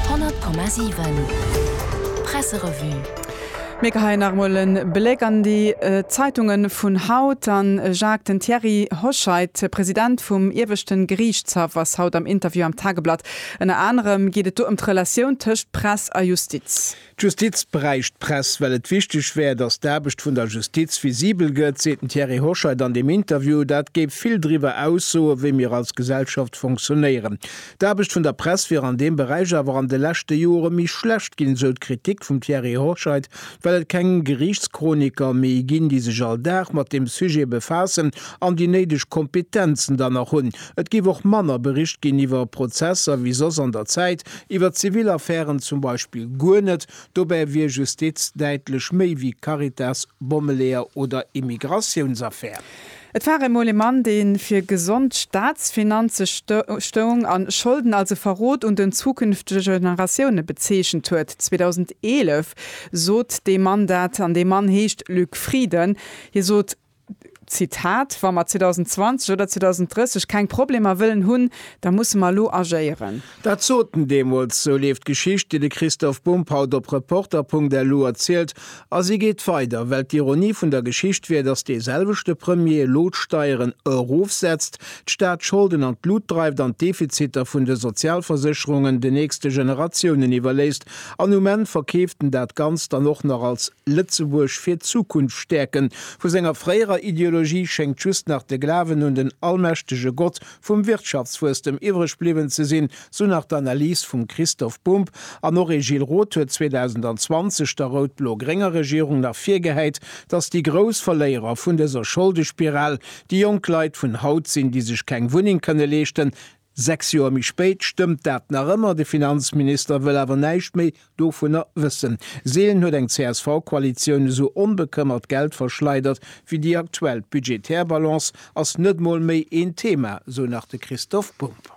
100,7 Presserevue. Mir geheien nach emol e Bléck an déi Zeitunge vun haut. A Jacques, den Thierry Hoscheit, President vum Ieweschten Geriichtshaff, ass haut am Interview am Tageblatt. Ënner anerem geet et do ëm d'Relatioun tëscht Press a Justiz. D'Justiz bräicht d'Press, well et wichteg wär, datt d'Aarbecht vun der Justiz visibel gëtt, seet den Thierry Hoscheit an deem Interview. Dat géif vill driwwer aussoen, wéi mir als Gesellschaft funktionéieren. D'Aarbecht vun der Press wier an deem Beräich awer an de leschte Jore méi schlecht ginn, esou d'Kritik vum Thierry Hoscheit, well et keng Geriichtschroniker méi ginn, déi sech all Dag mat deem Sujet befaassen an déi néideg Kompetenzen dann nach hunn. Et géif och manner bericht ginn iwwer Prozesser wéi soss an der Zäit, Iwwer zivil Affären zum Beispill guer net, dobäi wier Justiz däitlech méi wéi Caritas, Bommeleeër oder Immigratiounsaffär. Et war emol e Mann, dee fir gesond Staatsfinanze stoung a Scholden als e Verrot un den zukünftege Generatioune bezeechent huet. 2011 sot dee Mann dat. An dee Mann heescht Luc Frieden. Hie sot, Zitat, Wa mer 2020 oder 2030 keng Problemer wëllen hunn, da musse mer elo agéieren. Dat sot en deemools. Sou leeft d'Geschicht, déi de Christoph Bump haut op Reporter.lu erzielt. A si geet weider, well d'Ironie vun der Geschicht wier, datt dee selwechte Premier elo d'Steieren erofsetzt, d'Staatsscholden an d'Lut dreift an d'Defiziter vun de Sozialversécherungen de nächste Generatiounen iwwerléisst. An um Enn verkeeft en dat Ganzt dann och nach als Lëtzebuerg fir d'Zukunft stäerken. Vu senger fréierer Ideologie schéngt just nach de Glawen un den allmächtege Gott vum Wirtschaftswuesstem iwwreg bliwwen ze sinn, sou nach d'Analys vum Christoph Bumb. An och ee Gilles Roth huet 2020 der rout-blo-grénger Regierung nach virgehäit, datt déi grouss Verléierer vun dëser Scholdespiral déi jonk Leit vun haut sinn, déi sech keng Wunneng kënne leeschten, Sechs Joer méi spéit stëmmt dat nach ëmmer, de Finanzminister wëll awer näischt méi dovunner wëssen. Seelen huet eng CSV-Koalitioun esou onbekëmmert Geld verschleidert wéi déi aktuell. D'budgetär Balance ass net mol méi een Thema, sou nach de Christoph Bumb.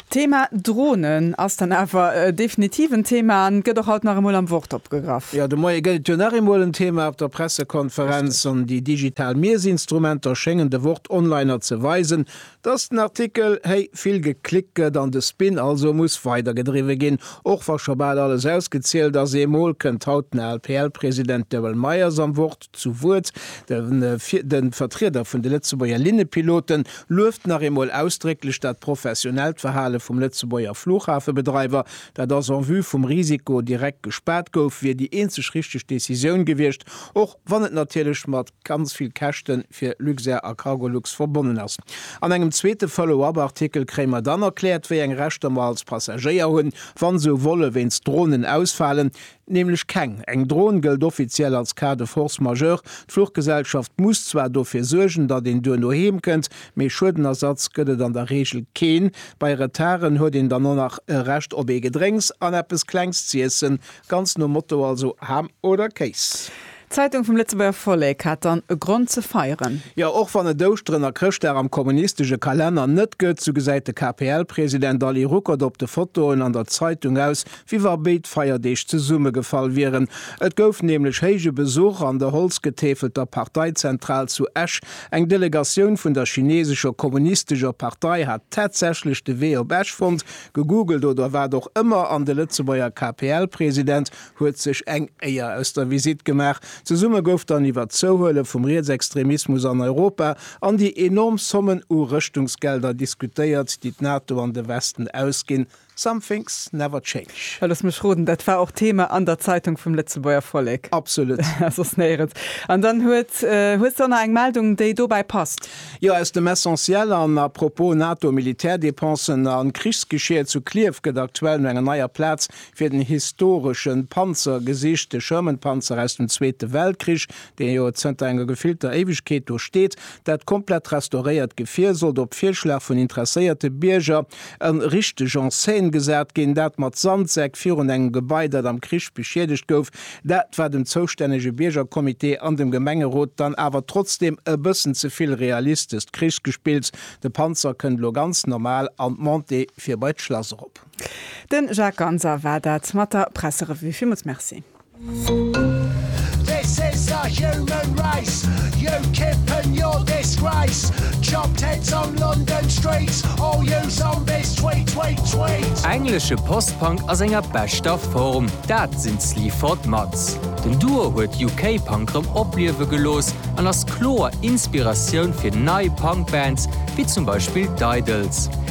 D'Thema Dronen ass dann awer definitiv en Thema an gëtt och haut nach emol am Wort opgegraff. Jo, de Moie gëtt et jo nach eemol en Thema op der Pressekonferenz an déi digital Miesinstrumenter schéngen de Wort-Onliner ze weisen, Dass den Artikel héi vill geklickt gëtt an de Spin also muss weider gedriwwe ginn, och wa scho bal alles ausgezielt ass, ee Mol kënnt haut den ALPL-President Daryl Meyers am Wort zu Wuert. De Vertrieder vun de Lëtzebuerger Linnepilote lueft nach eemol ausdrécklech dat professionellt Verhale vum Lëtzebuerger Fluchhafebedreiwer. Dat ass en vue vum Risiko direkt gespaart gouf, wier déi eenzeg richteg Decisioun gewiescht, och wann et natierlech mat. ganz vill Käschte fir Luxair a Cargolux verbonnen ass. An engem zweete Follow-up-Artikel kréie mer dann erkläert, wéi eng Rechter mer als Passagéier hunn, wa sou Volle wéinst Dronen ausfalen. Nämlech keng. Eng Dron gëllt offiziell als Cas de force majeure. D'Fluchgesellschaft muss zwar dofir suergen, datt een duerno heem kënnt, mee Schuedenersatz gëtt et an der Reegel keen. Bei Retarden huet een dann och nach e Recht op ee Gedrénks an eppes Klengs z'iessen, ganz nom Motto also Ham oder Kéis. D'Zeitung vum Lëtzebuerger Vollek hat dann e Grond ze feieren. Jo, och wann et Ouschteren a Chrëschtdag am kommunistesche Kalenner net gëtt, sou gesäit de KPL-President Ali Ruckert op de Fotoen an der Zeitung aus, wéi wa béid Feierdeeg zesummegefall wieren. Et gouf nämlech héije Besuch an der holzgetäfelter Parteizentral zu Esch. Eng Delegatioun vun der chinesescher kommunistescher Partei hat tatsächlech de Wee op Esch fonnt, gegoogelt oder wat och ëmmer, an de Lëtzebuerger KPL-President huet sech eng Éier aus der Visitt gemaach. Zesumme gouf dann iwwer d'Zouhuele vum Rietsextremismus an Europa an déi enorm Sommen u Rëschtungsgelder diskutéiert, déi d'NATO an de Westen ausginn. Some things never change. Looss mech roden, dat war och Thema an der Zeitung vum Lëtzebuerger Vollek. Absolut. A soss néierens. An dann huet, hues de och nach eng Meldung, déi dobäi passt? Jo, aus dem Essentiel an à propos NATO-Militärdepensen a Krichsgeschier zu Clierf gëtt aktuell no enger neier Plaz fir den historesche Panzer gesicht, de Sherman-Panzer aus dem Zweete Weltkrich, dee jo zënter enger gefillter Éiwegkeet do steet. Dat komplett restauréiert Gefier sollt op Virschlag vun interesséierte Bierger ë richteg en scène gesat ginn, dat mat Sandsäck virun engem Gebai, dat am Krich beschiedegt gouf. Dat war dem zoustännege Biergercomité an dem Gemengerot dann awer trotzdem ë bëssen ze vill realistescht Krichsgespills. De Panzer kënnt elo ganz normal an d'Montée fir bei d'Schlass erop. Den Jacques Ganser war dat mat der Presserevue. Villmools Merci. Englesche Post-Punk a senger beschter Form, dat sinn d'Sleaford Mods. Den Duo huet UK-Punk rëm opliewe gelooss an ass kloer Inspiratioun fir nei Punk-Bands, wéi zum Beispill d'Idles.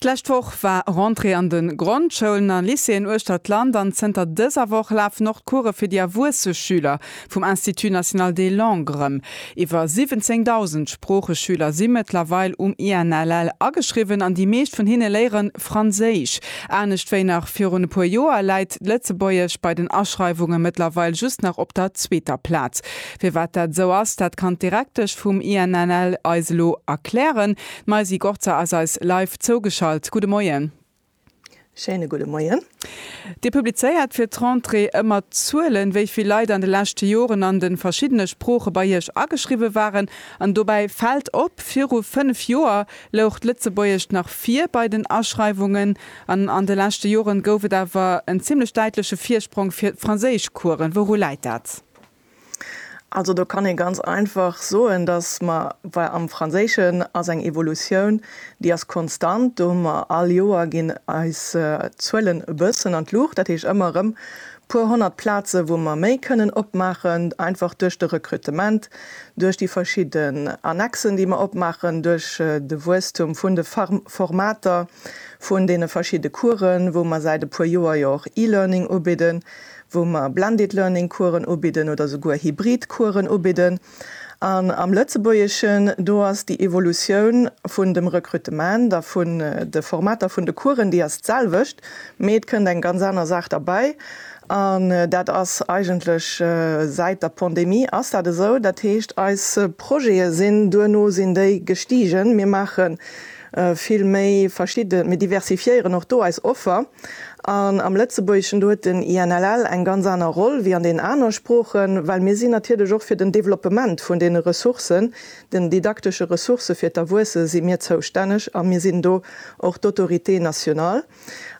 D'lescht Woch war Rentrée an de Grondschoulen a Lycéeën uechter d'Land an zënter dëser Woch lafen och d'Course fir déi erwuesse Schüler vum Institut national des langues erëm. Iwwer 17.000 Sproocheschüler si mëttlerweil um INLL ageschriwwen an déi meescht vun hinne léiere Franséisch. Anescht wéi nach virun e puer Joer läit d'Lëtzebuergesch bei den Aschreiwunge mëttlerweil just nach op der zweeter Plaz. Firwat dat esou ass, dat kann d'Direktesch vum INLL eis elo erklären. D'Maisy Gorzer ass eis live zougeschalt. Gudde Moien. Schéine gudde Moien. Dir publizéiert fir d'Rentrée ëmmer d'Zuelen, wéi vill Leit an de leschte Joren an de verschiddene Sprooche bei iech ageschriwwe waren. An dobäi fält op, viru fënnf Joer louch d'Lëtzebuergescht nach vir bei den Aschreiwungen. An an de leschte Joren gouf et awer en zimmlech däitleche Virsprong fir d'Franséischcoursen. Wouru läit dat? Also do kann ee ganz einfach soen, datt mer, well am Franséischen ass eng Evolutioun, déi ass konstant, do hu mer all Joer ginn eis Zuelen e bëssen an d'Luucht, dat heescht ëmmer erëm puer honnert Plaze wou mer méi kënnen opmaachen, einfach duerch de Rekrutement, duerch déi verschidde Annexen, déi mer opmaachen, duerch de Wuesstum vun de Formater, vun deene verschidde Coursen, wou mer säit e puer Joer jo och e-Learning ubidden, wou mer Blended Learning Coursen ubidden oder souguer hybrid Coursen ubidden. An am Lëtzebuergeschen, do ass déi Evolutioun vun dem Rekrutement a vun de Formater vun de Coursen, déi ass d'selwecht, mee et kënnt eng ganz aner Saach derbäi an dat ass eigentlech, säit der Pandemie ass dat esou, dat heescht eis Projete sinn duerno sinn déi gestigen. Mir maachen vill méi verschidden, mir diversifiéieren och do eis Offer an am Lëtzebuergeschen, do huet den INLL eng ganz aner Roll wéi an deenen aner Sproochen, well mir sinn natierlech och fir den Développement vun deene Ressourcen, den didaktesche Ressourcë fir d'Erwuesse si mir zoustänneg a mir sinn do och d'Autorité nationale.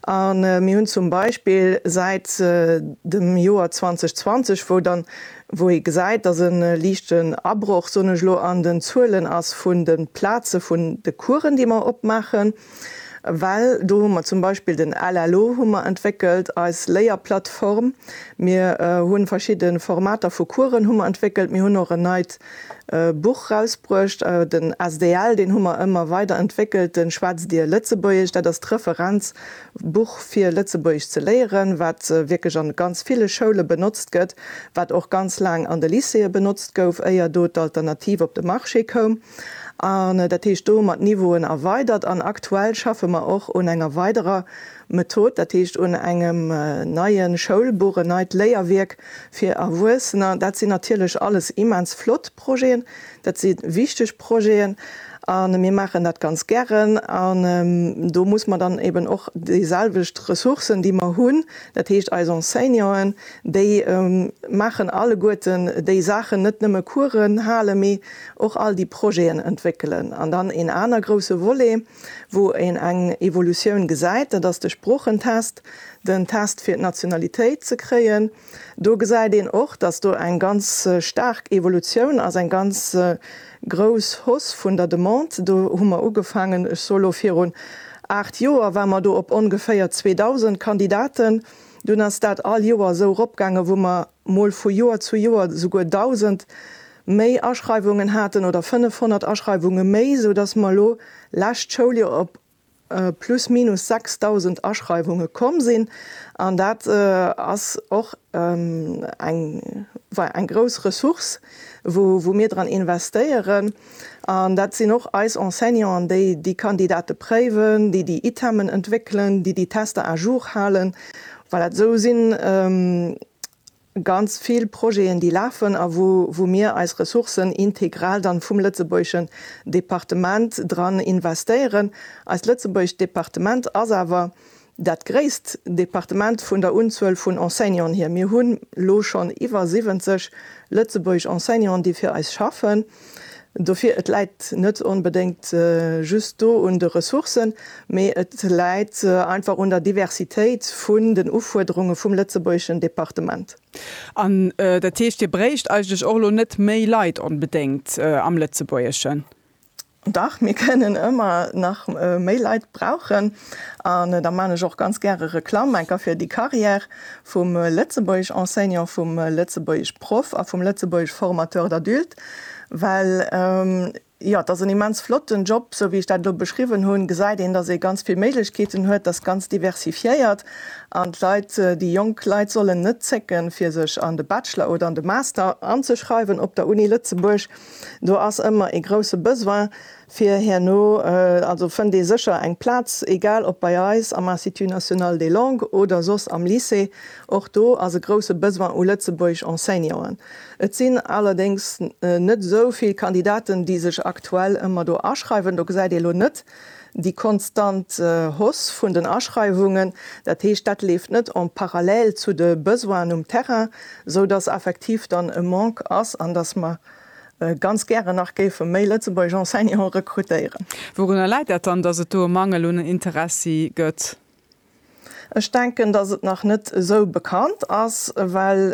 A mir hunn zum Beispill säit dem Joer 2020, wou dann, wou ee gesäit, dass e liichten Abroch, soen ech elo, an den Zuelen ass vun de Plaze vun de Coursen, déi mer opmaachen, well do hu mer zum Beispill den LLO hu mer entwéckelt, eis Léierplattform. Mir hu verschidde Formater vu Coursen hu mer entwéckelt. Mir hunn och en neit e Buch rausbruecht, den SDL, deen hu mer ëmmer weider entwéckelt, de Schwätz Dir Lëtzebuergesch, dat ass d'Referenzbuch fir Lëtzebuergesch ze léieren, wat wierklech an ganz ville Schoule benotzt gëtt, wat och ganz laang an de Lycéeë benotzt gouf, éier do d'Alternativ op de Marché koum. An dat heescht, do hu mer d'Niveauen erweidert an aktuell schaffe mer och un enger weiderer Method, dat heescht un engem neie Schoulbuch, en neit Léierwierk fir Erwuessener, dat sinn natierlech alles immens flott Projeten, dat si wichteg Projeten a mir maachen dat ganz gären. An do muss mer dann eben och déiselwecht Ressourcen, déi mer hunn, dat heescht eis Enseignanten, déi maachen alleguerten déi Saachen, net nëmme Coursen halen, mee och all déi Projeten entwéckelen. An dann een aner grouse Volet, Wou een eng Evolutioun gesäit, dat ass de Sproochentest, den Test fir d'Nationalitéit ze kréien. Do gesäit een och, datt do eng ganz staark Evolutioun ass, eng ganz grouss Hausse vun der Demande. Do hu mer ugefaangen, ech soe lo virun aacht Joer, ware mer do op ongeféier 2.000 Kandidaten. Dunn ass dat all Joer esou eropgaangen, wou mer mol vu Joer zu Joer souguer 1.000 méi Aschreiwungen haten oder 500 Aschreiwunge méi, esou datt mer elo lescht Schouljoer op plus minus 6.000 Aschreiwunge komm sinn. An dat ass och eng, well eng grouss Ressource, wou mir dran investéieren. An dat sinn och eis Enseignanten, déi déi Kandidate préiwen, déi déi Itemen entwéckelen, déi déi Tester à jour halen, well dat esou sinn. ganz vill Projeten, déi lafen a wou mir eis Ressourcen integral dann vum lëtzebuergeschen Departement dran investéieren. Eist lëtzebuergescht Departement ass awer dat gréisst Departement vun der Unzuel vun Enseignanten hier. Mir hunn elo schonn iwwer 70 lëtzebuergesch Enseignanten, déi fir eis schaffen. Dofir, et läit net onbedéngt just do un de Ressourcen, mee et läit einfach un der Diversitéit vun den Ufuerderunge vum lëtzebuergeschen Departement. An dat heescht, Dir bréicht eigentlech och elo net méi Leit onbedéngt am Lëtzebuergeschen? Dach, mir kënnen ëmmer nach méi Leit brauchen. An da man ech och ganz gäre Reklamm enker fir déi Carrière vum Lëtzebuergesch Enseignant, vum Lëtzebuergesch Proff a vum Lëtzebuergesch Formateur d'adultes, well, jo, et ass en immens flotten Job, sou wéi ech dat elo beschriwwen hunn, gesäit een, dass ee ganz vill Méiglechkeeten huet, dass ganz diversifiéiert an d'Leit, déi jonk Leit sollen net zécken, fir sech an de Bachelor oder an de Master anzeschreiwen op der Uni Lëtzebuerg. Do ass ëmmer ee grousse Besoin. Fir herno also fënnt ee sécher eng Plaz, egal ob bei eis am Institut national des langues oder soss am Lycée. Och do ass e grousse Besoin u Lëtzebuergesch Enseignanten. Et sinn allerdéngs net esou vill Kandidaten, déi sech aktuell ëmmer do aschreiwen. Do gesäit ee elo net déi konstant Hausse vun den Aschreiwungen. Dat heescht, dat leeft net en parallèle zu de Besoinen um Terrain, esou dass effektiv dann e Manque ass an dass mer ganz gären nach géife méi lëtzebuergesch Enseignante rekrutéieren. Wourunner läit dat dann, datt et do e Mangel un Interessi gëtt? Ech denken, datt et nach net esou bekannt ass, well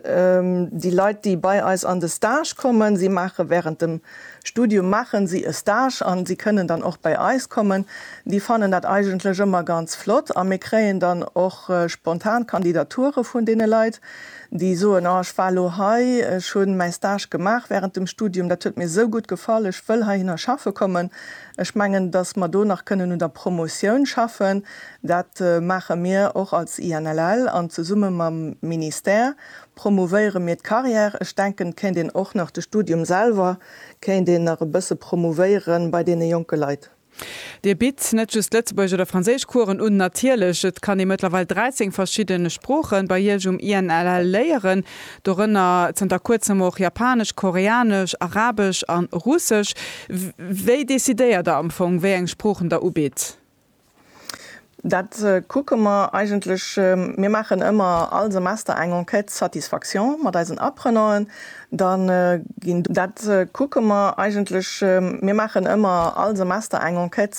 déi Leit, déi bei eis an de Stage kommen, si maache während dem Studium maache si e Stage an si kënnen dann och bei eis kommen, déi fannen dat eigentlech ëmmer ganz flott a mir kréien dann och spontan Kandidature vun deene Leit. déi soen, oh ech war lo hei, ech hunn mäi Stage gemaach während dem Studium, dat huet mir esou gutt gefall, ech wëll heihinner schaffe kommen. Ech mengen, datt mer do nach kënnen un der Promotioun schaffen. Dat maache mir och als INLL an zesumme mam Ministère promouvéiere mir d'Carrière. Ech denken, et kéint een och nach de Studium selwer kéint een nach e bësse promouvéiere bei deene jonke Leit. Dir bitt net just Lëtzebuergesch oder Franséisch Coursen un, natierlech, et kann ee mëttlerweil 13 verschidden Sproochen bei iech um INLL léieren, dorënner zënter kuerzem och Japanesch, Koreanesch, Arabesch an Russesch. Wéi decidéiert der am Fong wéi eng Sproochen der ubitt? Dat kucke mer eigentlech. Mir maachen ëmmer all Semester eng Enquête satisfaction mat eisen Apprenanten. Da ginn. Dat kucke mer eigentlech. Mir maachen ëmmer all Semester eng Enquête.